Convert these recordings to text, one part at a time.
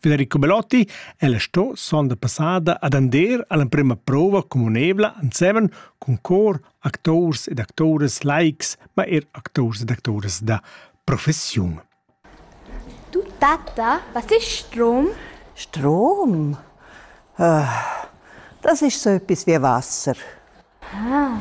Federico Belotti è la sto sonda passada ad andar all'emprema prova communevla ensemen cun cor actors ed actores laics, ma er actors ed actores da professiun. Du Tata, was ist Strom? Strom? Äh, das ist so etwas wie Wasser. Ah,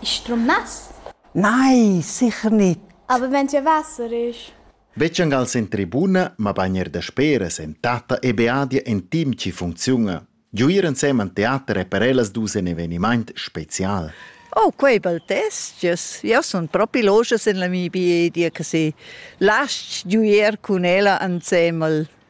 ist Strom nass? Nein, sicher nicht. Aber wenn es ja Wasser ist? Betg angal sen tribuna, mabain er daspera sen tatta e beadia en team chi funcziuna. Giuir ensemen teater è per ellas dus in evenimaint spezial. Oh, quei bel testgias. Jau sun propi loschas en la mia biedia che se lasci giuier cun ella ensemel.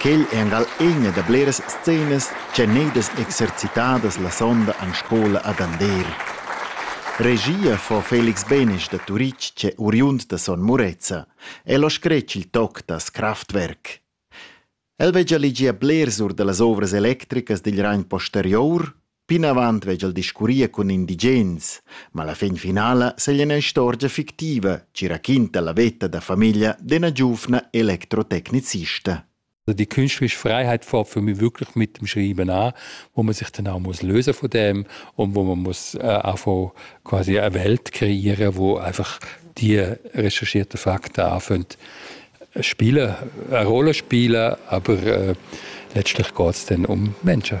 Quel è angal ina da bleras scenas ch'èn gnüdas exercitadas la sonda en scola ad Andeer. Regia fa Felix Benesch da Turitg ch'è oriund da Son Murezza. El ha scret il toc das Kraftwerk. El veggia legier blers or da las ovras electricas digl ragn posterior Plinavant vegl discurrir cun indigens, ma la fin finala seglia ina istorgia fictiva che raquinta la veta da famiglia d'ina giuvna electrotecnicista. Also die künstlerische Freiheit fährt für mich wirklich mit dem Schreiben an, wo man sich dann auch muss lösen von dem und wo man muss äh, einfach quasi eine Welt kreieren, wo einfach die recherchierten Fakten anfangen spielen, eine Rolle spielen, aber äh, letztlich geht es dann um Menschen.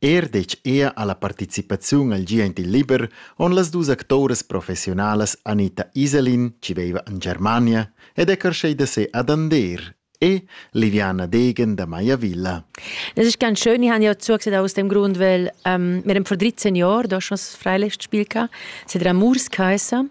Er detg ea alla participaziun al gi aint il liber on las dus actoras professiunalas Anita Iselin, chi veiva in Germania, ed è carschei da se ad Ander e Liviana Degen da Maiavilla. Das ist ganz schön. Ich habe ja zugesagt aus dem Grund, weil ähm, wir haben vor 13 Jahren da schon das Freilichtspiel gehabt. Es hat Amours geheißen.